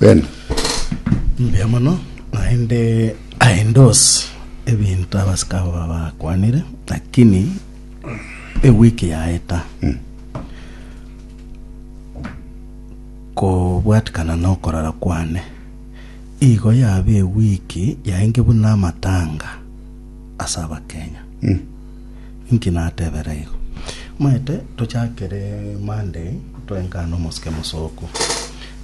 Ben. Mbuya mono, naende I endorse ebinto abasike abo ba- bakwanire, lakini ewiki yaeta kobwatikana na okorara kwane igo yaba ewiki yaenge buna amatanga ase abakenya Inki natebera igo? Moete tochakere Monday toengane omosike mosooku.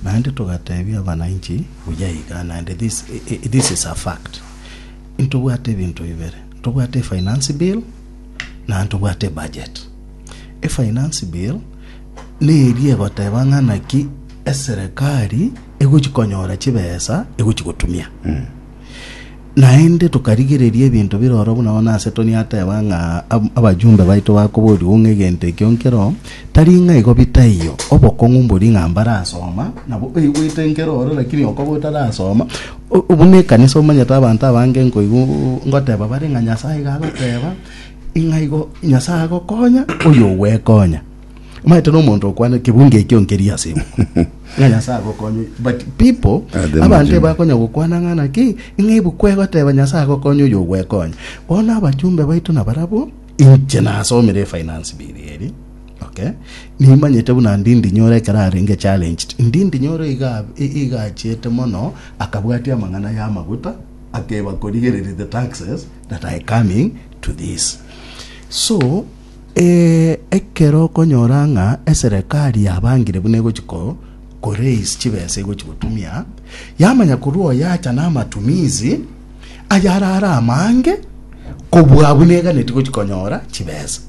Naende togatebia abananchi buya iga naende this, this is a fact. Ntobwate ebinto bibere. Ntobwate efinance bill naende ntobwate budget. Efinance bill neri egoteba ng'ana ki eserekari egochi konyora chibesa egochi gotumia. Mm. Naende tokarigereria ebinto bire ororo buna bono ase Tony ateba ng'a ab- abajumbe baito bakoborirwe ng'a egento ekio nkero, tari ng'a igo bitaiyo. Obokong'u mbori ng'a mbarasoma, nabo oigwete nkero ororo lakini okoba otarasoma. O- o- buna ekanisa omanyete abanto abange nkoigwa ngoteba bare ng'a Nyasaye iga agoteba, ing'a igo Nyasaye agokonya, oyogwekonya. Omanyete nomonto okwana kebunga ekio nkeria ase imo. Ng'a Nyasaye agokonye. But people Are them abanto Jimmy? ebakonya gokwana ng'a naki ng'a ibu kwegoteba Nyasaye agokonye oyo ogwekonya. Bono abachumbe baito nabarabwo inche nasomire efinance bill eri. Okay. Nimanyete buna Ndindi Nyoro ekero arenge challenged. Ndindi Nyoro iga i- iga achiete mono akabwatia amang'ana ya amaguta akeba korigereria the taxes that are coming to this. So Ee, ekero okonyora ng'a eserekari yabangire buna egochia ko koraise chibesa egochia gotumia, yamanya korwa oyacha na amatumizi ayare are amange kobua abwo neganeti gochia konyora chibesa.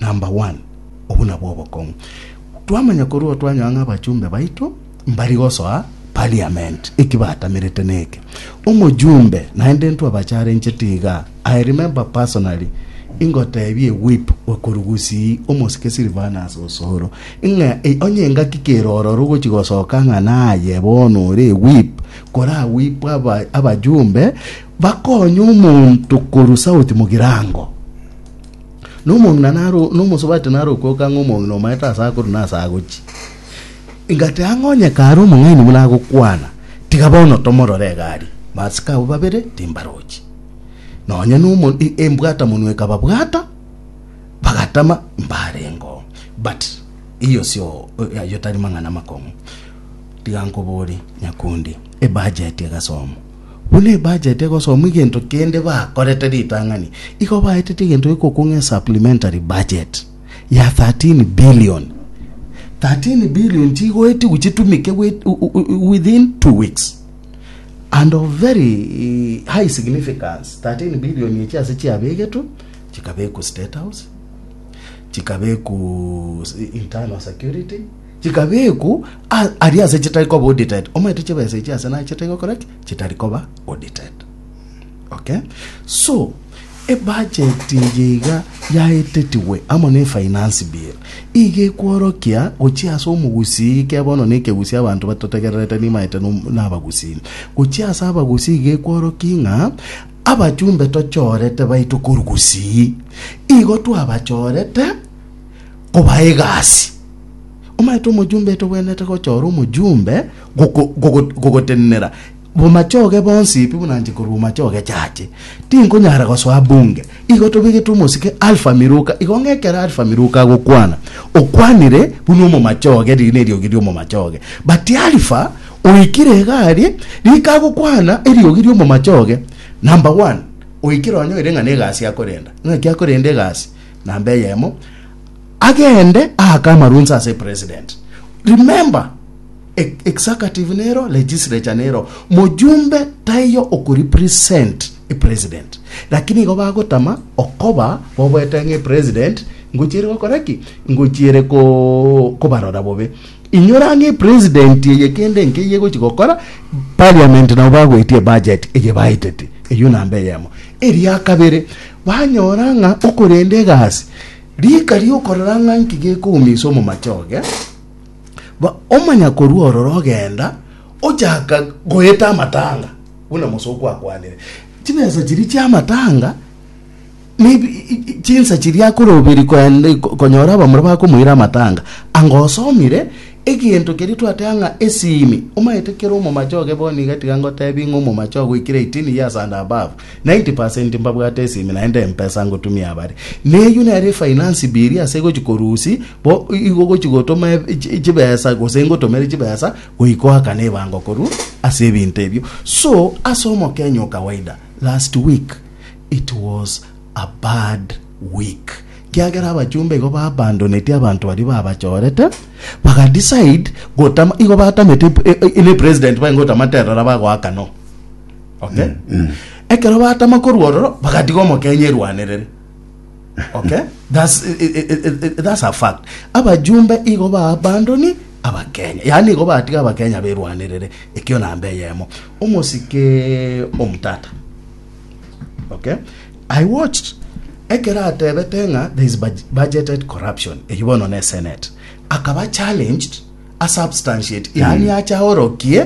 Number one, obuna bwa obokong'u. Twamanya korwa oo twanyoa ng'a abachumbe baito, Mbari gosoa Parliament, eki batamerete neke, Omojumbe, naende intwe abacharenchete iga, I remember personally ingoteebie Whip w'ekoru Gusii, omosike Silvanus Osoro, ng'a ei onye engaki kere ororo gochi gosoka ng'a naye bono ore Whip, kora Whip aba abajumbe bakonye omonto korwa South Mugirango. Nomong'ina naro nomosubati naro okoka ng'a omong'ina omaete ase akorwa na ase agochia. Ingati ang'e onye kare omong'aini buna agokwana, tiga bono tomorore egari, basike abwo babere timbarochi. Nonya nomo embwata-monwa ekababwata, bagatama mbarengo. But iyo sio ayo tari mang'ana amakong'u. Tiga nkobore, nyakundi, ebudget egasomo. Buna ebudget egosomo egento kende bakorete ritang'ani, igo baetete egento gekokong'a esupplementary budget. ya 13 billion. 13 billion chigoetigwe chitumike with- u- u- u- within two weeks and of very eh, high significance 13 billion echi ase chiabegetwe chikabekwa state house chikabekwa internal security chikabekwa a- aria ase chitari koba audited omaete chibesa echi ase naye chitari gokora ki chitari koba audited Okay, so ebudget eye iga yaetetigwe amo ne finance bill iga ekworokia gochia ase omogusii kebe bono na ekegusii abanto batotegererete nimaete no- na abagusii gochia ase abagusii iga ekworokia ng'a abachumbe tochorete baito korwa gusii igo twabachorete koba egasi omanyete omojumbe etogwenerete gochora omojumbe goko- gogo- gogotenenera Bomachoge bonsi pi buna nche korwa bomachoge chache, tinkonyara gosoa bunge. Igo tobegete omosike Alfa Miruka, igo ng'a ekero Alfa Miruka agokwana, okwanire buna omomachoge, riina eriogi ri'omomachoge. Batia Alfa oikire iga aria, rika agokwana eriogi ri'omomachoge, Number one, oikire onye oire ng'a negasi akorenda, ng'aki akorenda egasi? Namba eyemo, agende aake amarunse ase President. Remember! E executive nero legislature nero mojumbe taiyo oku represent e president lakini igo bagotama okoba boboete ng'e president ngochiere gokora ki ngochiere ko kobarora bobe inyora ng'e president eye kende nke iye gochi gokora parliament nabo bagoetie budget eye baitete eyo namba eyemo eria kabere banyora ng'a okorende egasi rika riokorora ng'a nki gekoumisa omomachoge Ba omonyakorua ororo ogenda, ochaka goeta amatanga, buna mosokwe akwanire. Chibesa chiria chi'amatanga nebi- i- i- chinsa chiria akoroberia koenda konyora abamura bakomoira amatanga. Anga osomire egento keria twateba ng'a esimi, omanyete kera omomache oge bono iga tiga ngotebie ng'a omomache ogoikire eighteen years and above, 90 percent mbabwate esimi naende empesa ngotumia abare neyio nere finance bill ase gochi korusi bo igo gochi gotoma eb- chibesa gose ngotomere chibesa goikoaka nebango koru ase ebinto ebio so ase omokenya okawaida last week it was a bad week kiagera abachumba igo babandonetie abanto baria babachorete bagadecide gotama igo batamete e- e- ne president baye ngotamate erora bagoaka no okay ekero batama korwa ororo bagatiga omokenya erwanerere okay that's, i- i- i- i- i- that's a fact abajumbe igo ba abandoni abakenya yaani igo batiga abakenya berwanerere ekio namba eyemo omosike omtata okay i watched ekero atebete ng'a there is bud- budgeted corruption eyi bono ne senate akaba challenged a substantiate yaani acha orokie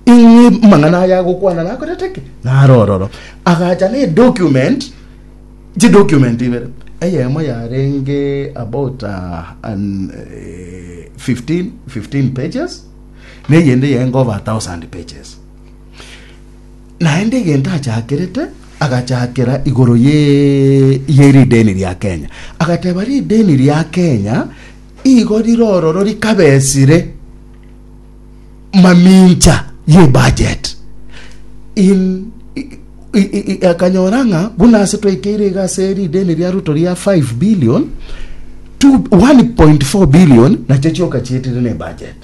ing'e mang'ana aya agokwana nakorete ki nare ororo agacha ne document chidocument ibere eyemo yarenge about uh, an, eh, 15 15 pages neyende yarenge over 1000 pages naende egento achakerete agachakera igoro ye ye rideni ria kenya agateba rideni ria kenya Igo rirororo rikabesire mamincha y'ebudget. In, i- i- i- i- akanyora ng'a buna ase twaikeire iga ase rideni ria ruto ria 5 billion two- 1.4 billion nacho chioka chietire ne budget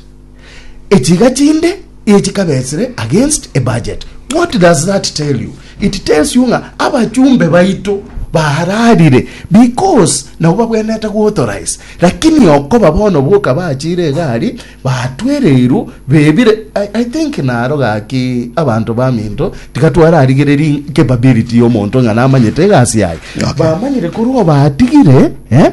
echiga chinde echikabetsire against a budget what does that tell you it tells you ng'a abachumbe baito bararire because nabo babwenete guauthorize lakini okoba bono boka bachire egari batwereirwo bebire I, i think naro gaki abanto baminto tiga twararigereri capability y'omonto ng'a namanyete egasi yaye Okay. bamanyire korwa obatigire eh?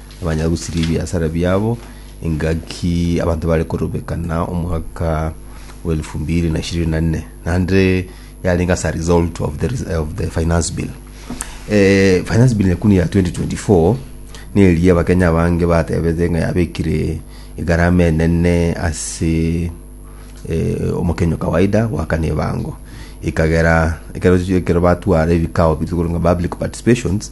Bamanya gosiria ebiasara biabo, engaki abanto bare korobekana omwaka wa elfu mbiri na ishirini na nne naende yarenge ase a result of the, res- of the finance bill eh, finance bill ekuni ya 2024 neria abakenya abange batebete ng'a yabekire egarama enene ase eh, omokenya kawaida goakana ebango ekagera ekero ekero batwara ebikao bitwe korwa ng'a public participations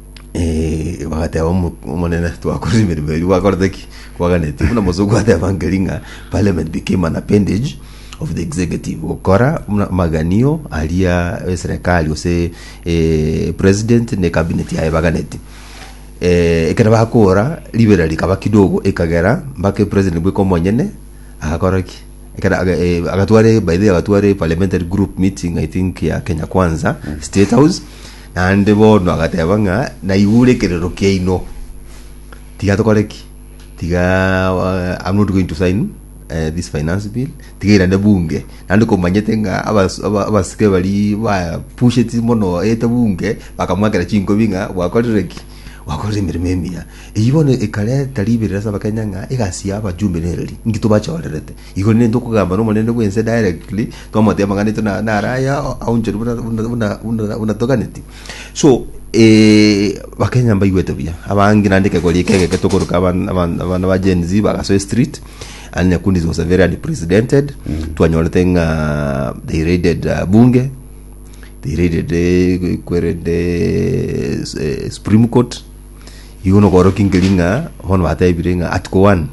Eh, bagateba "Omo- omonene twakoribiriberi erio gwakorete ki kwaganeti buna mosoku ateba nkeri ng'a parliament became an appendage of the executive gokora buna amaganio aria eserekari gose eh, president ne cabinet yaye baganeti eh, ekero bakora ribera rikaba kidogo ekagera mpaka president bweka omonyene agakora ki Ekero aga- eh, agatware by the way, agatware parliamentary group meeting i think ya kenya kwanza state house Naende bono agateeba ng'a, Naigure ekerero kiaino. Tiga tokore ki? Tiga I'm not going to sign eh, this finance bill. Tiga irane bunge. Naende komanyete ng'a abas- aba- abasike bari bapusheti mono ete bunge bakamwakera chinkobi ng'a gwakorire ki? Gwakorire emeremo emiya. Eyio bono ekareta riberera ase Abakenya ng'a egasi ya abajumbe nereri. Inki tobachorerete? Igoro nigo tokogamba nomonene bw'ense directly, twamoteeba ng'a naitwe na- nare aya aonchorwe buna- buna- buna- buna- buna toganeti. So Bakenya mbaigwete buya, abange naende ekegori eke egeke tokoroka aban- aban- abana ba Gen Z bagasoa estreet, and Nyakundi was very unprecedented, twanyorete ng'a they raided uh, Bunge, they raided eh, kwerende eh, Supreme Court, igo nokorokia nkeri ng'a bono batebire ng'a Article one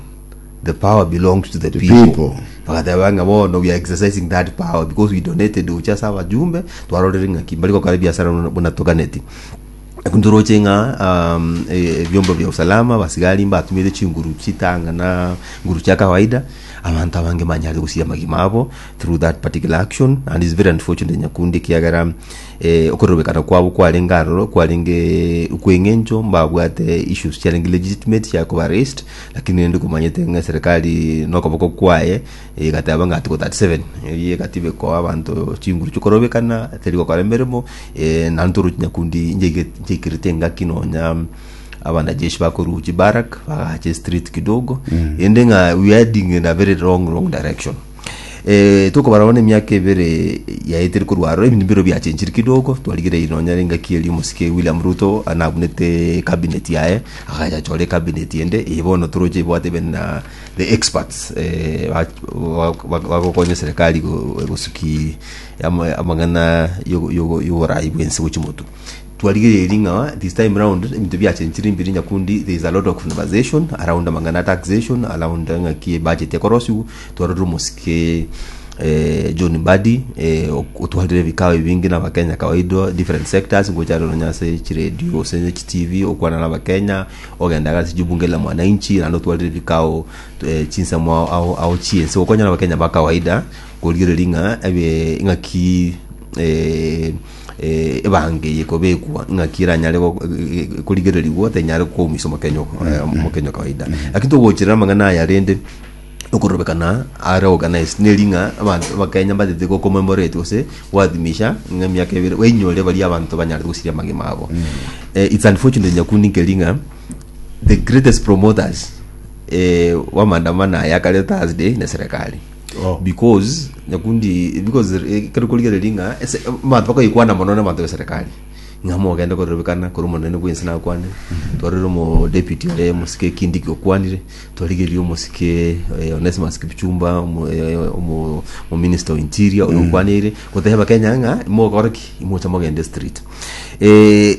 The power belongs to the, The people. people. bagateba ng'a bono we are exercising that power because we donated gochia ase abajumbe twarorire ng'aki mbari gokora ebiasara buna- buna toganeti ekero toroche ng'a um, e- ebiombo bia usalama basigari mbatumete chinguru chitanga na nguru chia kawaida abanto abange banyare gosiria amagima abo through that particular action and is very unfortunate nyakundi kiagera eh, okorobekana kwabo kwarenge aroro kwarenge kweng'encho mbabwate issues chiarenge legitimate chiakoba raised Lakini rende komanyete ng'a eserekari nokoboko kwaye egateba ng'a article 37 eye egatibekwa abanto chinguru chikorobekana teri gokora emeremo eh, naende torochi nyakundi njaige- njaikirete engaki nonya abanajeshi bakoru chibarak bagache street kidogo ende ng'a we are heading in a very wrong wrong direction tokobarao nemiaka ebere yaetire korwa aro, ebinto mbireo biachenchire kidogo, twarigereiri nonya engaki eria omosike William Ruto ane abunete cabinet yaye, agacha achora ecabinet ende, eye bono toroche ebwate even na the experts ba- ba- bagokonya serikali go- gosuki ama- amang'ana yogo- yogo- yoborai bwense gochia motu. Twarigereiri ng'a this time round ebinto biachenchire mbiri nyakundi there is a lot of conversation around amang'ana taxation around ng'aki ebudget ekorosiwa twarorire omosike eh, John Mbadi eh, ok- otwarire ebikao ebinge na abakenya kawaida different sectors ngochare nonya ase chiredio ase chitv okwana na abakenya ogenda gasi jubunge la mwananchi naende otwarire ebikao eh, chinsemo ao- ao ao chiense gokonya na abakenya ba kawaida korigereria ng'a ebe ng'aki eh, eh, ebango eye ekobekwa ng'aki eranyare go- eh, eh, korigererigwa tenyare koumisa omokenyo eh, omokenyo kawaida lakini togocherera amang'ana aya rende okorobekana are organized neri ng'a abanto abakenya mbatete go commemorate gose goadhimisha ng'a emiaka ebere bainyore baria abanto banyarete gosiria amagima abo eh, it's unfortunate nyakundi nkeri ng'a the greatest promoters eh, wamaandamano aya akareta thursday na eserekari Oh. because nyakundi because eh, kero korigereria ng'a ese abanto bakoyekwana mono na abanto b'eserekari ng'a mogende korerobekana kore omonene bwensi nakwane twarorire omo deputy ore omosike kindiki okwanire twarigerie omosike eh, onesimus kipchumba omo- eh, omo omo minister of interior oyo okwanire goteba kenya ng'a mogore ki mocha mogende street eh,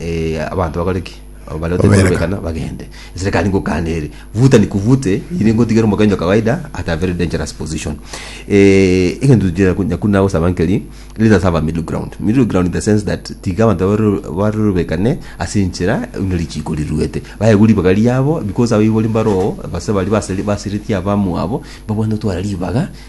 Eh, abanto bakore ki? Abo baria batari Babereka. korobekana bagende. Eserekari ngokana ere. Vuta nikuvute, iri ngotigere omokenyo kawaida at a very dangerous position. Eh, egento nyaku- nyakuna gosaba nkeri, let us have a middle ground. Middle ground in the sense that tiga abanto baroro- barorobekane ase enchera buna richiko riruete. Baegwe ribaga riabo because abwo igo mbaro oo, gose baria baseri- basereti abamwabo, babwate gotwara ribaga,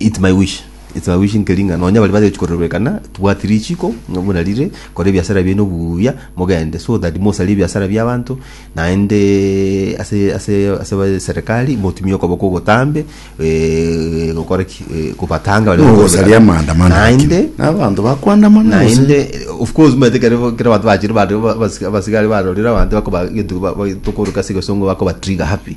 Eat my wish, eat my wish nkeri ng'a nonya baria bagechia korerwa ekana, tubwati richiko, ng'a buna rire, kora ebiasara biaino buya, mogende so that mosarie ebiasara bia abanto, naende ase ase ase ase serikali motumie okoboko ogotambe eh, gokora ki eh, kobatanga baria Nogosaria bakorwa ekana. amaandamano naende lakini. Na abanto bakwandamana gose. naende of course omanyete kere kere abanto bachire bare ba- abasi- abasigari barorire abanto bakoba egento ba- ba- tokoroka ase egesongo bakoba trigger happy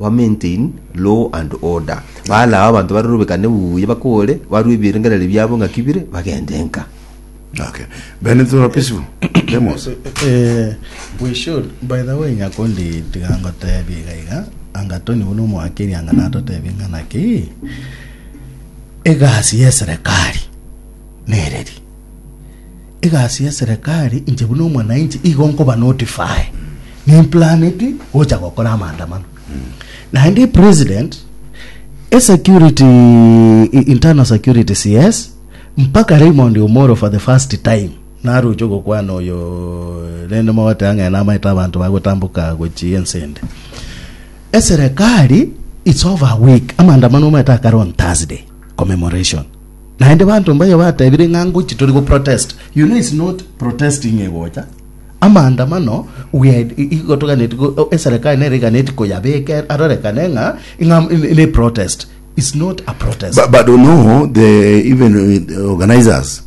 ba maintain law and order, balao abanto barorobekane buya, bakore, barue ebirengererio biabo ng'aki bire, bagende nka. Okay. Bene to are peaceful. Demos. Eh, we should by the way nyakundi tiga ngotebia iga iga anga toni buna omwakiri anga natotebia ng'ana ki egasi y'eserekari nereri Egasi y'eserekari inche buna omwananchi igo nkoba notify nimplaneti gocha gokora amaandamano naende epresident esecurity i- internal security cs mpaka raymond omoro for the first time naroche gokwana oyo rende mogoteba ng'a namaete abanto bagotamboka gochia ense ende eserekari its over a week amaandamano omaete akare on thursday commemoration Naende banto mbaye batebire ng'a ngochia tori go protest you know it's not protesting egocha amaandamano we are igo toganeti eserekari nere iganeti koyabeka arorekane ng'a ng'a ne protest it's not a protest But, but you know, the even uh, the organizers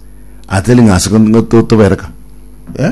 are telling us ngo to- tobereka. Eh?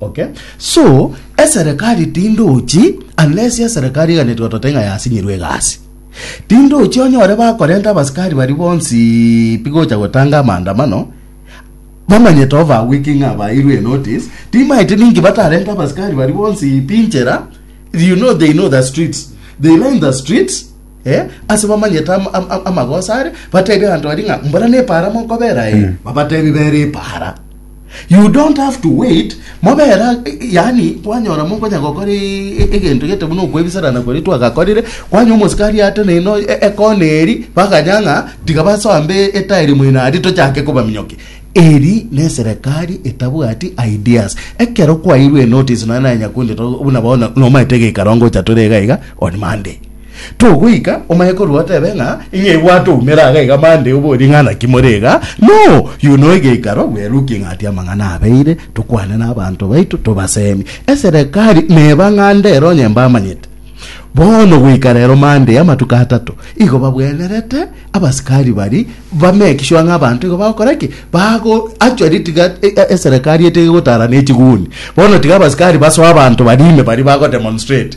Okay. So eserekari tindochi unless eserekari eganetwe otote ng'a yasinyirwe egasi. Tindochi onyore bakorenta abasikari bari bonsi pi gocha gotanga amaandamano bamanyete over a week ng'a bairwe a notice timaeti ninki batarenta abasikari bari bonsi pi inchera you know they know the streets they line the streets Eh, ase bamanyete am- am- am- amagoso are batebi abanto bari ng'a mbora nepaara mokobera e babatebi bera epaara you don't have to wait mobera eh, yani kwanyora mokonya gokora e- e- egento gete buna okwebisarana kore twagakorire kwanya omosikari ateneine o- e- ekona eri bakanya ng'a tiga basoambe etairi moino aria tochake kobaminyoki eri ne serikali etabwati ideas ekero kwairwe notice nonye nyakundi buna bono nomaete geikarongo ocha tore iga iga on monday Togoika omanye korwa otebe ng'a ing'e igo atoumera aga iga mande obo ring'ana ki more iga? No! Yu no egeikaro bweruki ng'ati amang'ana abeire, tokwane n'abanto baito tobasemie. Eserekari neba ng'ande ero onye mbamanyete. Bono goika rero mande y'amatuko atato igo babwenerete abasikari bari bame ekiswa ng'a abanto igo bagokora ki? Bago actually tiga eserekari etege gotara ne chiguni. Bono tiga abasikari basoe abanto bari ime bari bago demonstrate.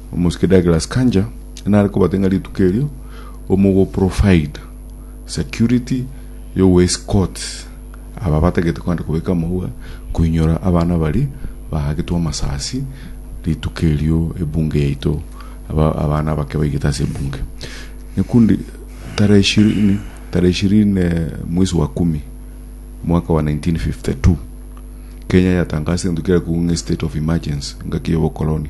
Omosike Douglas Kanja nare kobate ng'a rituko erio omogoprovide security y'ogoescort aba batagete kogenda kobeka amauga koinyora abana baria baagetwe amasasi rituko erio ebunge yaito aba abana abake baigete ase ebunge nekundi tarehe ishirini tarehe ishirini mwezi wa kumi mwaka wa 1952 Kenya yatangasa egento kiarekugwa ng'a estate of emergency ngaki y'obokoloni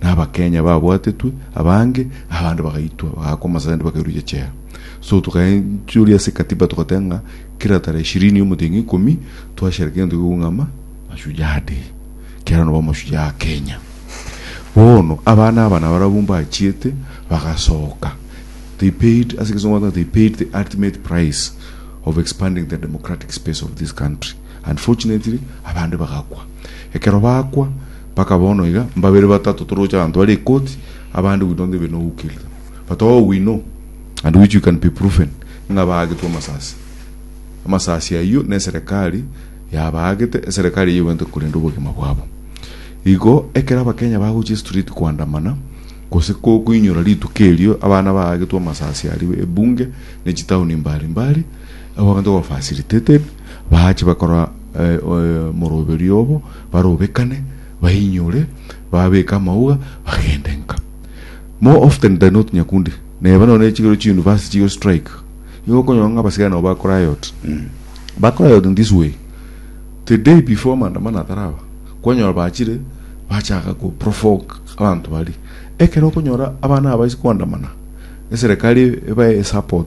na abakenya babwatetwe abange, abande bagaitwa bagakwa amasende bakairwa chechera. So tukaenchoria ase katiba togoteba ng'a kera tarehe ishirini ya omoteng'u ikomi twashereke egento gikogwa ng'a ama mashujaa day kiaro nabo amashujaa a Kenya. Bono abana aba nabarabwo mbachiete bagasoka they paid ase egesongo bateba they paid the ultimate price of expanding the democratic space of this country unfortunately abande bagakwa ekero bakwa Mpaka bono iga, mbabere batato toroche abanto bare ekoti, abande we don't even know who killed them, but all we know and which we can be proven ng'a baagetwe amasasi. Amasasi ayio neserekari yabaagete, eserekari eyio egwentire korenda obogima bwabo. Igo ekero abakenya bagochia estreet koandamana gose ko koinyora rituko erio abana baagetwe amasasi aria ebunge ne chitaoni mbari mbari, abanto were facilitated, Baache bakora omoroberio obo, barobekane, bainyore, babeke amauga, bagende nka. More often than not Nyakundi, neba nonya nechigero chiuniversity chigo strike, nigo okonyora ng'a abasigae nabo ba riot. Ba riot in this way, the day before maandamano ataraba, kwanyora bachire bachaka ko provoke abanto baria. Ekero okonyora abana aba ase koandamana, eserekari ebae support,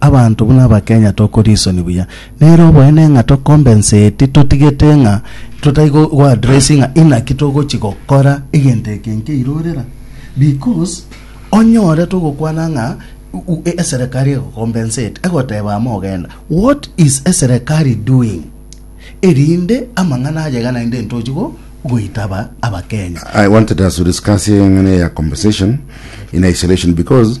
Abanto buna Abakenya tokwa risoni buya. Nere oboene ng'a to compensate totigete ng'a totai go go address ng'a inaki togochi gokora egento eke nkeire orera. Because onyore togokwana ng'a u- u- e- eserekari ego compensate egoteba amo ogenda. What is eserekari doing? Erinde amang'ana ayega naende ntochi go goitaba Abakenya. I wanted us to discuss here ng'ana ya compensation in isolation because